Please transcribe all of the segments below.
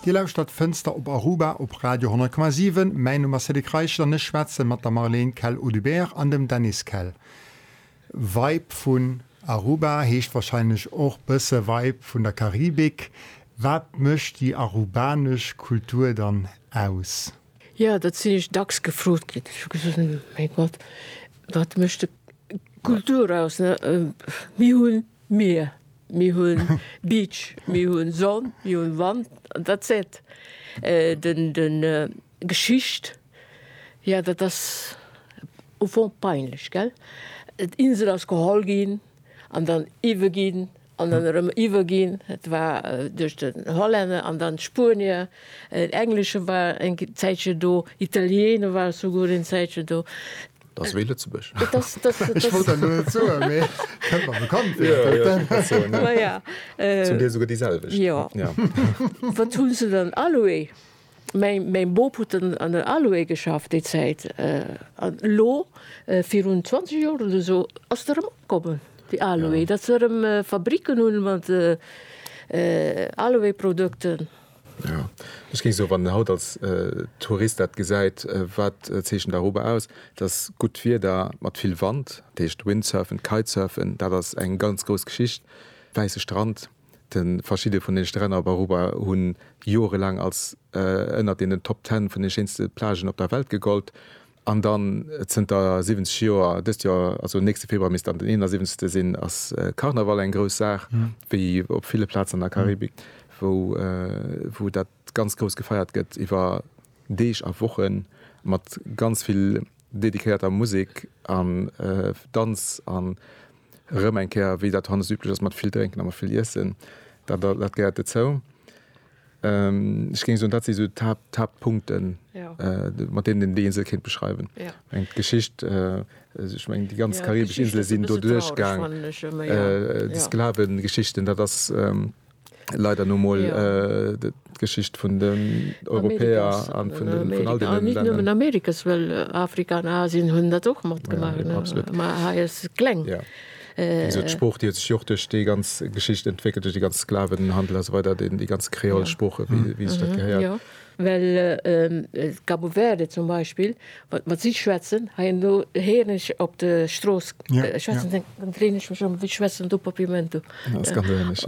Dir lauschtert Fënster op Aruba op Radio 10,7. Mäin Numm ass Cédric Reichel an ech schwätze mat der Marlène Kell-Audubert an dem Dennis Kell. Vibe vun Aruba heescht warscheinlech och bësse Vibe vun der Karibik. Wat mécht déi arubanesch Kultur dann aus? Jo, dat sinn ech dacks gefrot ginn. Ech hu gesot, Mäi Gott, wat mécht d'Kultur aus? Mir hunn d'Mier. Mir hunn Beach, mir hunn Sonn, mir hunn Wand an that's it. Den, den, Geschicht, jo dat ass au fond peinlech, gell. D'Insel ass geholl ginn an dann iwwe ginn an dann erëm iwwe ginn. Et war duerch den Hollänner an dann d'Spuenier, en Englesche war eng Zäitche do, Italiener ware souguer en Zäitche do. Dass wéi Lëtzebuerg. Ech wollt dat elo net soen, mee kënnt mer bekannt vir. Jo, jo, dat kann soen, jo. Maja. Zum Deel souguer déi selwecht. Jo. Jo. Wat hu se dann Aloe? Mäi, mäi Bop huet en an der Aloe geschafft déi Zäit. An elo, virun 20 Joer oder esou, ass et erëm opkommen, déi Aloe. Jo. Datt se erëm Fabricken hunn mat Aloe-Produkten. Jo, ech géing soen, wann een haut als Tourist dat gesäit, wat zeechent Aruba aus? Et ass gutt Wieder mat vill Wand, dat heescht Windsurfen, Kitesurfen, dat ass eng ganz grouss Geschicht. Wäisse Strand, de verschidde vun de Stränn op Aruba hu jorelaang als ënnert deenen Top Ten vun de schéinste Plagen op der Welt gegollt. An dann zënter 70 Joer, dëst Joer, also nächste Februar misst dann den 71. sinn, ass Karneval eng grouss Saach, wéi op ville Plazen an der Karibik, wou dat ganz grouss gefeiert gëtt iwwer Deeg a Wochen, mat ganz vill dediquéierter Musek an Danz an erëm eng Kéier, wéi dat hannescht üblech ass, mat vill Drénken a mat vill Iessen. Dat gehéiert dozou. Ech géing soen, dat si sou d'Haaptpunkten, mat deenen déi Insel kéint beschreiwen. Ech mengen d'Geschicht, ech mengen déi ganz karibesch Insele sinn doduerchgaang, déi Sklavengeschichten, dat ass leider nu mol d'Geschicht vun den Europäer a vun all deenen Länner. A net nëmmen Amerikas, well Afrika an Asien hunn dat och matgemaach, ma hei ass et kleng. Wéi gesot, d'Sprooch, déi huet sech jo och duerch déi ganz Geschicht entwéckelt, duerch de ganze Sklavenhandel a sou weider, déi ganz Kreolsprooche, wéi sech dat gehéiert. Well d'Cabo Verde zum Beispill, wat mat si schwätzen, hei an do héieren ech op de Strooss schwätzen, dann dréin ech mech ëm, Wie schwätzt dann do Papiamento?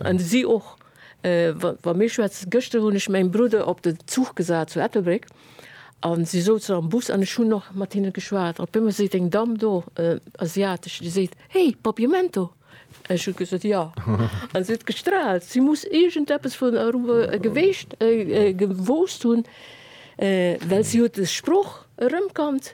An si och, wa mir schwätzen. Gëschter hunn ech mäin Brudder op den Zuch gesat zu Ettelbréck, A si souzen am Bus an ech hunn och mat hinne geschwat. Op eemol seet eng Damm do, asiatesch, déi seet, Hey, Papiamento! An ech hu gesot, Jo. An si huet gestraalt. Si muss iergendeppes vun Aruba geweescht, gewosst hunn, well si huet de Sproch erëmkannt.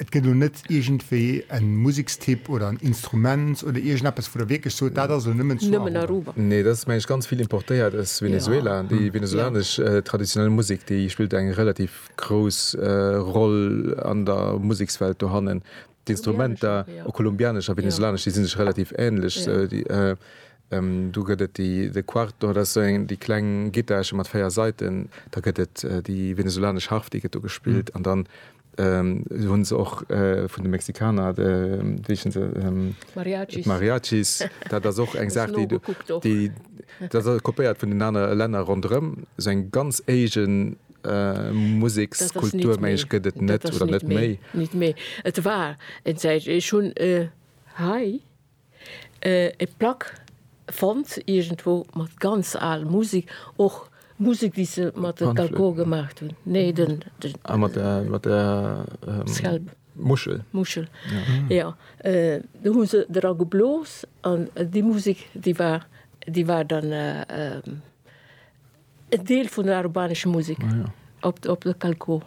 Et gëtt elo net iergendwéi e Musekstyp oder en Instrument oder iergendeppes, wou Der wierklech sot, dat ass elo nëmmen zu Aruba? Nee, dat ass mengen ech ganz vill importéiert aus Venezuela. Déi venezuelanesch traditionell Musek, déi spillt eng relativ grouss Roll an der Musekswelt dohannen. D'Instrumenter, och kolumbianesch a venezuelanesch, déi si sech relativ änlech. Do gëtt et de Cuarto, dat ass esou déi kleng Gittarche mat véier Saiten. Da gëtt et déi venezuelanesch Harf, déi gëtt do gespillt. An dann Esou hunn se och vun de Mexikaner, wéi heeschen se? Mariachis. Mariachis. Dat ass och eng Saach, déi do. Nougekuckt och. Déi, dat ass alles kopéiert vun den anere Länner ronderëm. Esou eng ganz éigen Musekskultur, meng ech, gëtt et net oder net méi. Dat ass net méi. Net méi. Et war eng Zäit, ech hunn hei. E Plack fonnt iergendwou mat ganz al Musek, och Musek déi se mat de Dalgor gemaacht hunn. Nee den, ah mat der, mat der Scalp, Muschel, Muschel jo. Do hu se dra geblos an déi Musek déi war, déi war dann, E Deel vun der arubanesche Musek op de Calco.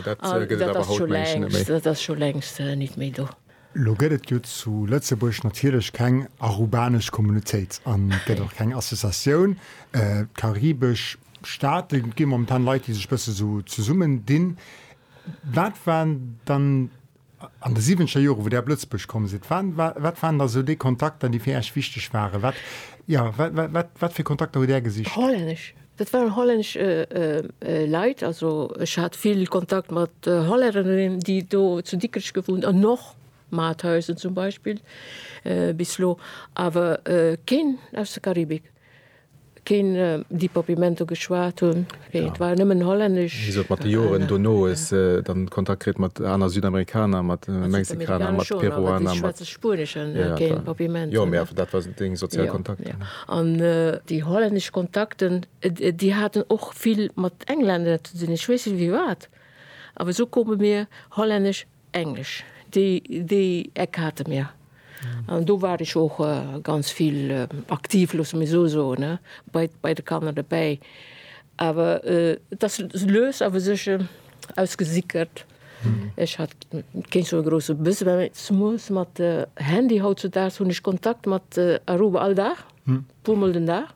Dat ass scho längst nit méi do. Lo gëtt et jo zu Lëtzebuerg natierlech keng arubanesch Communautéit an et gëtt och keng Associatioun. Karibesch Staate gi momentan Leit, déi sech bësse sou zesummen dinn. Wat waren dann An de siwenzénger Joren, wou Där op Lëtzebuerg komm sidd, wat, wat waren da sou déi Kontakter, déi fir Äech wichteg waren? Wat, jo, wat, wat, wat, wat fir Kontakter hutt Där gesicht? Hollännesch. Dat waren hollännesch Leit. Also ech hat vill Kontakt mat Hollännerinnen, déi do zu Dikrech gewunnt an och Mathäusen zum Beispill bis elo, awer keen aus der Karibik. Keen déi Popimento geschwat hunn, wéi et war nëmmen Hollännesch. Wéi se et mat de Joren dono hues dann Kontakt kritt mat aner Südamerikaner, mat Mexikaner, mat Peruaner, mat. Ech schwätze Spuenesch an keen Popimento. Jo, mee awer dat war esou deng sozial Kontakten. An déi hollännesch Kontakten, déi haten och vill mat Englänner ze dinn, ech weess net wéi wat, awer esou koume mir Hollännesch. Englesch, déi, déi Eck hate mir. An do war ech och ganz vill aktiv, loosse mir esou soen, ne, bei, bei de Kanner dobäi. Awer et ass lues awer sech ausgesickert. Ech hat keen sou e grousse Besoin, mä zemoos mat Handy hautzedaags hunn ech Kontakt mat Aruba all Dag, puermol den Dag.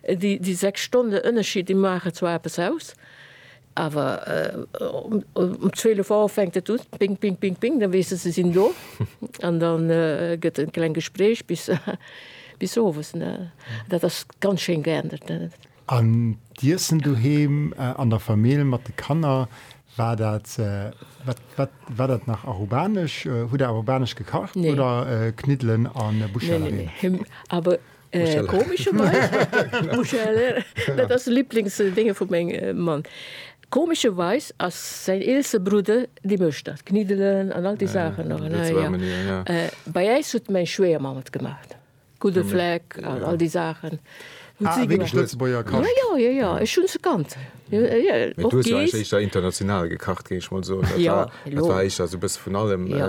Déi, déi sechs Stonne Ënnerschied, déi maache zwar eppes aus. Awer um 12 Auer fänkt et un, ping, ping, ping, ping, da weess de, se sinn do. An da gëtt et e kleng Gespréich bis owes. Dat ass ganz schéin geändert. An d'Iessen doheem an der Famill mat de Kanner, war dat, war dat nach arubanesch? Hutt Der arubanesch gekacht oder Kniddelen a Buschellereen? Neen, neen, neen, awer Äh, komescherweis, Muschel, dat ass de Liblingsdénge vu meng Mann. Komescherweis ass säin eelste Brudder dee mécht dat, kniddelen an all déi Saachen nach, ne, jo. Äh, bei äis huet meng Schwéiermamm et gemaacht, gudde Fleck an all déi Saachen. Ah, wierklech Lëtzebuerger Kascht? Jo, jo, jo, jo, ech hunn se kannt. Jo, jo, och. Mee du hues jo eréischt éischter international gekacht, géing ech mol soen. Jo, elo. Dat war éischter esou e bësse vun allem. Jo.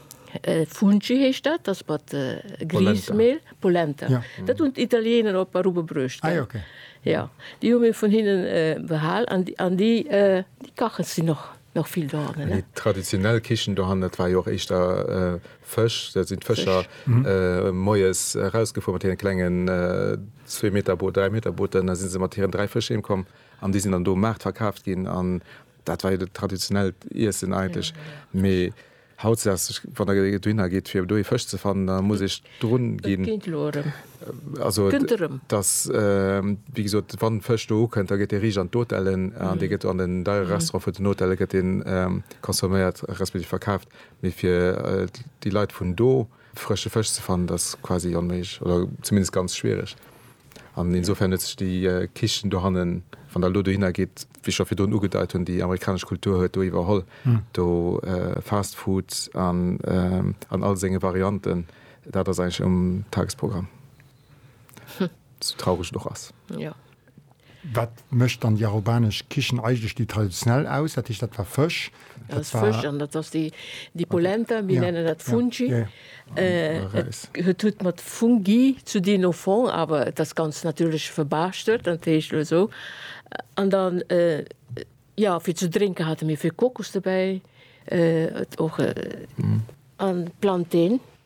Fungi heescht dat, ass mat Griesmehl, Polenta, dat hunn d'Italieener op Aruba bruecht, gell? Jo, déi hu mir vun hinne behal an an déi kache si nach nach vill dohannen, ne? Déi traditionell Kichen dohannen, dat war jo och éischter Fësch, da sinn d'Fëscher moies erausgefuer mat hiren klengen zwee Meter Booter, dräi Meter Booten, da si se mat hiren dräi Fësch heem komm an déi sinn dann do um Maart verkaaft ginn an dat war jo dat traditionellt Iessen eigentlech. Mee Haut sass ech, wann der dohinner geet fir do ee Fësch ze fannen, da muss ech drun ginn. Et geet elo erëm. Also et gëtt erëm. Et ass wéi gesot, wann Fësch do ukënnt, da gëtt dee riicht an d'Hotellen an dee gëtt an den deiere Restaurant vun den Hotelle gëtt deen consomméiert respektiv verkaaft. Mee fir déi Leit vun do. Frësche Fësch ze fannen ass quasi onméiglech oder zumindest ganz schwiereg. An insofern huet sech déi Kichen dohannen, wann Der elo dohinner gitt, wéi ech scho virdrun ugedeit hunn, déi amerikanesch Kultur huet do iwwerholl. Do Fast Food an all senge Varianten, dat ass eigentlech um Tagesprogramm, sou traureg et och ass. Wat mécht dann déi araubanesch Kichen eigentlech déi traditionell aus? Dat heescht, dat war Fësch, dat war. Fësch an dat ass déi, déi Polenta, mir nennen dat Fungi. Et huet huet mat Fungi ze dinn au fond, awer et ass ganz natierlech verbaarschtelt, dat heescht elo esou. An dann, jo, fir ze drénke hate mir vill Kokos dobäi, och an Planten.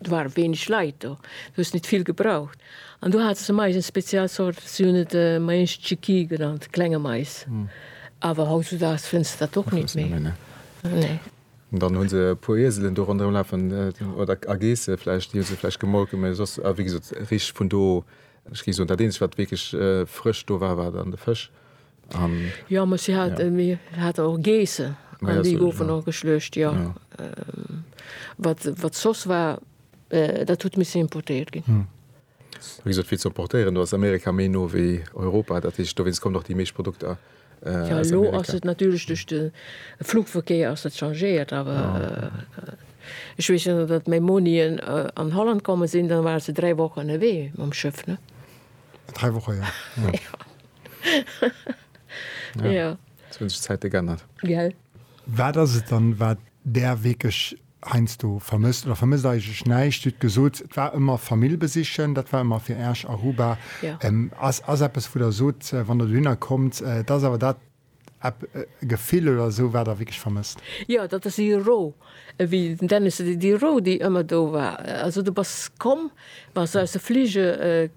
Do ware wéineg Leit do, du hues net vill gebraucht. An do hate se Mais, eng speziell Zort, si hunn et Mais Chiqui genannt, klenge Mais. Awer hautzudags fënns de dat och net méi. Dann hu se e puer Ieselen do ronderëm lafen, oder a Geesse vläicht, déi hu se vläicht gemolken. Mee soss, a wéi gesot, richteg vun do, ech géif soen, dat eenzegt, wat wierklech frësch do war, war dann de Fësch. Jo mech si hat mi hat och Geesse an déi goufen och geschluecht jo. Wat soss war dat huet misse importéiert ginn. Wéi gesot vill ze importéieren, do ass Amerika méi no wéi Europa, dat heescht dowéinst kommen och déi meescht Produkter aus Amerika. Jo elo ass et natierlech duerch de Flugverkéier ass dat changéiert, awer ech weess jo datt meng Monien an Holland komme sinn, da ware se dräi Wochen ënnerwee mam Schëff ne. Dräi Woche jo. ja. Jetzt hun sech d'Zäite g'ännert. Gell? Wat ass et dann, wat Där wierklech heiansdo vermësst? Oder vermësst eigentlech näischt? Dir hutt gesot, et war ëmmer Famill besichen, dat war ëmmer fir Iech Aruba. Ja. Ass eppes, wou Der sot, wann Der dohinner kommt, dat ass awer dat, Epp e Gefill oder esou wat der wierklech vermësst? Jo, dat ass déi Ro, ewéi den Dennis seet, déi Ro, déi ëmmer do war. Also du bass komm, wa s de aus de Flige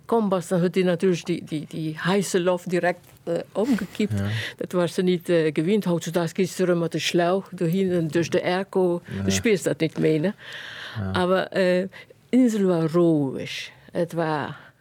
komm bass, dann huet déi natierlech déi, déi heisse Loft direkt ëmgekippt. Dat waars de nit gewinnt. Hautzudags gees de erëm mat de Schlauch dohinnen duerch de Airco, du spiers dat nit méi, ne? Awer Insel war roueg, et war.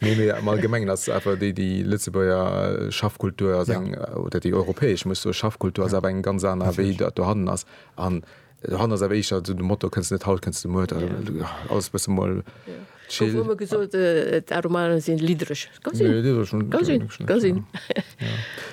Nee, mee am Allgemengen ass et awer déi, déi Lëtzebuerger Schaffkultur ass eng, oder déi europäesch, muss soe, Schaffkultur ass awer eng ganz aner, wéi dat dohannen ass. An dohannen ass awer éischter esou de Motto, kënns net haut, kënns de muer, alles e bësse mol chill. Gouf ëmmer gesot, d'Aromanen sinn liddreg. Ka sinn. Nee, liddreg hunn. Ka sinn, ka sinn.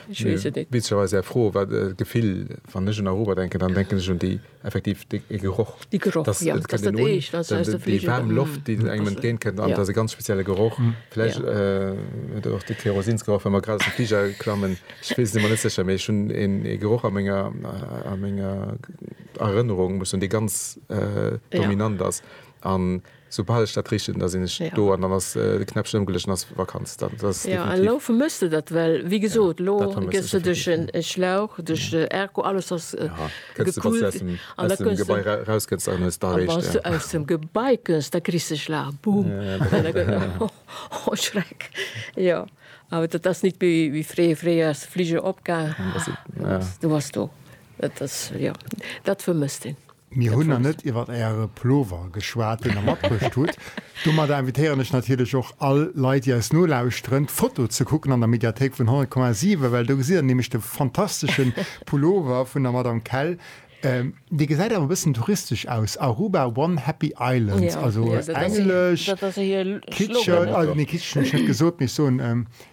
Ech weess et net. Witzegerweis, Är Fro war d'Gefill, wann ech un Aromer denken, dann denken ech un déi. Effektiv dee Geroch. Dee Geroch, dass, jo, dass dat eescht, dass aus der Fliger. Déi waarm Loft, déi engem entgéint kënnt, an et ass e ganz spezielle Geroch. Vläicht huet och dee Kerosinsgeroch, wa mer grad aus dem Fliger klammen. Ech weess et ëmmer net sécher, mee ech hunn ee Geroch a menger, a menger Erënnerung, muss soen, dee ganz dominant ass. An Soubal ech dat richten, da sinn ech do an dann ass de Knäppchen ëmgeluecht an ass Vakanz. Dat ass definitiv. Jo, elo vermëss de dat, well wéi gesot, elo gëss de duerch en Schlauch, duerch de Ergo, alles ass gekühlt an da kënns de. Aus dem Gebai eraus kënns an hues d'Areecht. A wann s du aus dem Gebai kënns, da kriss de e Schlauch, boom. Oh Schreck! Jo, awer dat ass nit méi wéi fréier. Fréier ass de Fliger opgaang, du wars do. Dat ass, jo, dat vermësst een. Mir hunn nach net iwwert Äre Plover geschwat, deen Der matbruecht hutt. Domadder invitéieren ech natierlech och all Leit, déi eis nolauschteren, d'Foto ze kucken an der Mediathéik vun 100,7, well do gesitt Der nämlech de fantastesche Pullover vun der Madame Kell. Dee gesäit awer e bëssen touristesch aus, Aruba, one happy island, also englesch, kitscheg, nee kitscheg hunn ech net gesot, mee ech soen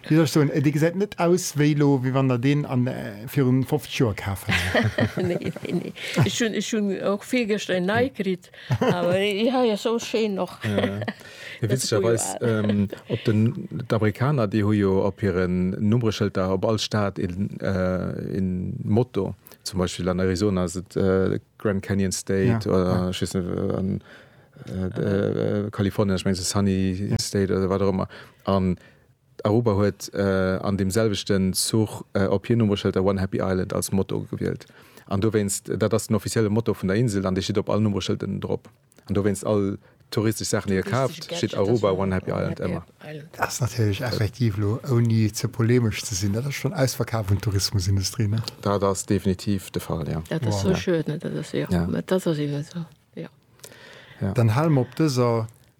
Wéi soll ech soen, dee gesäit net aus wéi elo, wéi wann der deen an virun 50 Joer kaf hätt. Nee, nee, nee. Ech hunn, ech hunn och virgëschter een nei kritt, awer dee hei ass esou schéin och. Mee witzegerweis, op den, d'Amerikaner, déi hu jo op hiren Nummreschëlter op all Stad een, een Motto. Zum Beispill an Arizona ass et Grand Canyon State oder ech weess net, an Kalifornien ass et mengs Sunny State oder wat och ëmmer. Aruba huet an deem selwechten Zuch op hir Nummreschëlter One Happy Island als Motto gewielt an dowéinst, dat ass den offizielle Motto vun der Insel an dee steet op all Nummreschëlden drop an dowéinst all touristesch Saachen déi dir kaaft steet Aruba One Happy Island ëmmer. Dat ass natierlech effektiv elo ouni ze polemesch ze sinn, dat ass schonn ausverkaf un d'Tourismusindustrie, ne? Dat ass definitiv de Fall, jo. Dat ass sou schued, ne? Dat ass, jo, dat ass eben esou, jo. Dann hale mer op dëser.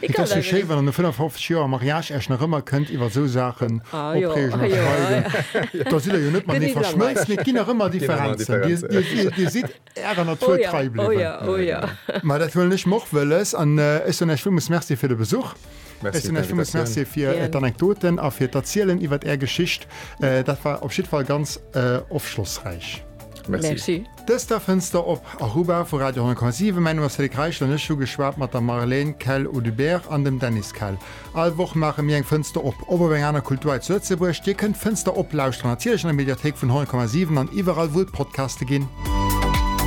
Et ass jo schéi wann an 55 Joer am Mariage Äech nach ëmmer kënnt iwwer sou Saachen opreegen a streiden. Da sidd der jo net matenee verschmëlzt, mee et ginn nach ëmmer Differenzen. Dir sidd Ärer Natur trei bliwwen. Ma dat huelen ech mer och wëlles an ech soen Äech villmools Merci fir de Besuch. Ech soen Äech villmools Merci fir d'Anekdoten a fir d'Erzielen iwwer Är Geschicht. Dat war op jiddwer Fall ganz ofschlossräich. Merci. Dëst war Fënster op Aruba vu Radio 10,7. Mäin Numm ass Cédric Reichel an ech hu geschwat mat der Marlène Kell-Audubert an dem Dennis Kell. All Woch maache mir eng Fënster op, op op eng aner Kultur hei zu Lëtzebuerg. Dir kënnt Fënster op lauschteren, natierlech an der Mediathéik vun 10,7 an iwwerall wou et Podcaste ginn.